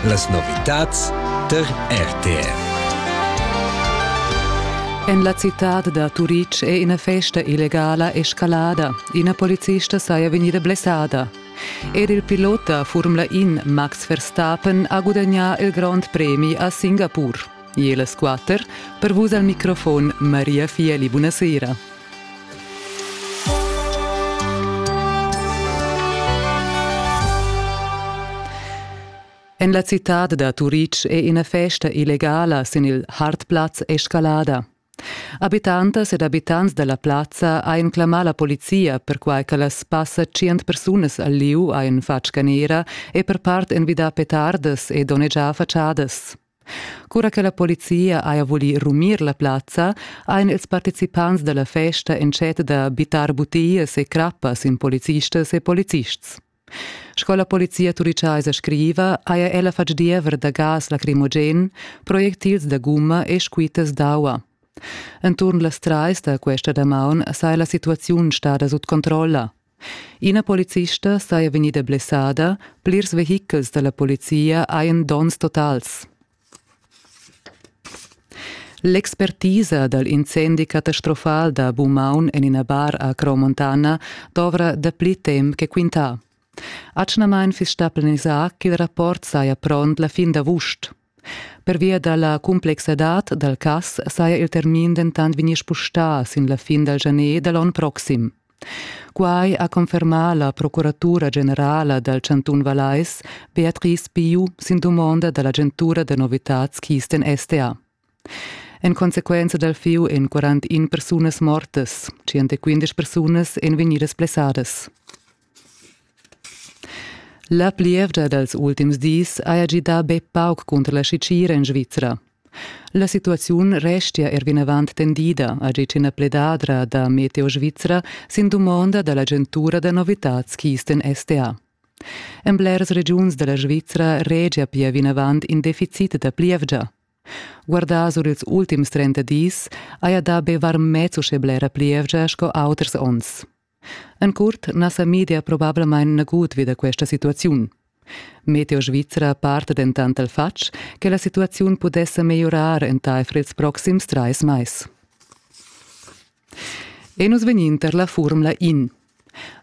Las novitads tar RTR. En la citad da Turitg è ina festa illegala escalada. Ina polizista saja vegnida blessada. Er il pilot da Formula In Max Verstappen ha gudagnà il grond premi a Singapur. E las quatter per vus al microfon Maria Fieli. Buonasera. En la citad da Turitg è ina festa illegala sin il Hartplatz escalada. Abitantas ed abitants dalla plazza ein clamà la polizia perquai che las passa tschient persunas al liu ein fatg canera e per part envidà petardas e donnegià fatschadas. Cura che la polizia haja vulì rumir la plazza, han ils participants da la festa entschet da bittar butias e crappas in policistas e polizists. Sco la polizia turichaisa scriva, haja ella fatg diever da gas lacrimogen, projectils da gumma e squittas d'aua. Enturn las trais da questa damaun saja la situaziun stada sut controlla. Ina policista saja vegnida blessada, plirs vehichels da la polizia hajan donns totals. L'expertisa dal incendi catastrofal da Bumaun en ina bar a Crau-Montana dovra dapli temp che quintà. Atgnamain fiss stà planisà ch'il rapport saja pront la fin d'avust, Pervia dalla complexadad dal cass saja il termin dentant vegnì spustà sin la fin dal janer da l'onn proxim. Quai ha confermà la procuratura generala dal chantun Vallais, Beatrice Piu, sin dumonda da l'agentura da novitads Kisten STA. En consequenza dal fiu en 41 persunas mortas, 115 persunas èn vegnidas blessadas. La plievgia dals ultims dis haja gidà be pauc cunter la Sitgira en Svizra. La situaziun restia er vinavant tendida, ha ditg ina pledadra da Meteo Svizra sin dumonda da l'agentura da novitads Kisten STA. En blers regiuns da la Svizra regia pia vinavant in deficit da plievgia. Guardà sur ils ultims 30 dis haja dà be varmez uschè blera plievgia sco auters onns. En curt na sa media probablamain nagut vi da questa situaziun. Meteo Svizra parta dentant dal fatg che la situaziun pudess megliorar entaifer ils proxims trais mais. E nus vegnin tar la Formula In.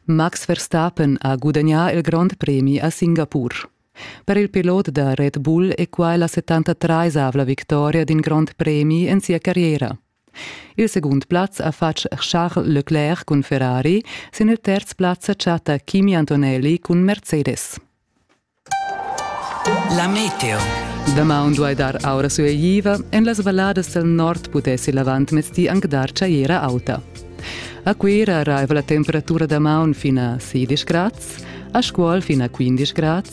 Max Verstappen ha gudagnà il grond premi a Singapur. Per il pilot da Red Bull è quai la 73-avla victoria d'in grond premi en sia carriera. Il secund plaz ha fatg Charles Leclerc cun Ferrari, sin il terz plaz sa chatta Kimi Antonelli cun Mercedes. La meteo. Damaun duai dar aura sueiva. En las valladas del nord pudessi l'avantmezdi anc dar tschaiera auta. A Cuira arriva la temperatura damaun fin a 16 grads, a Scuol fin a 15 grads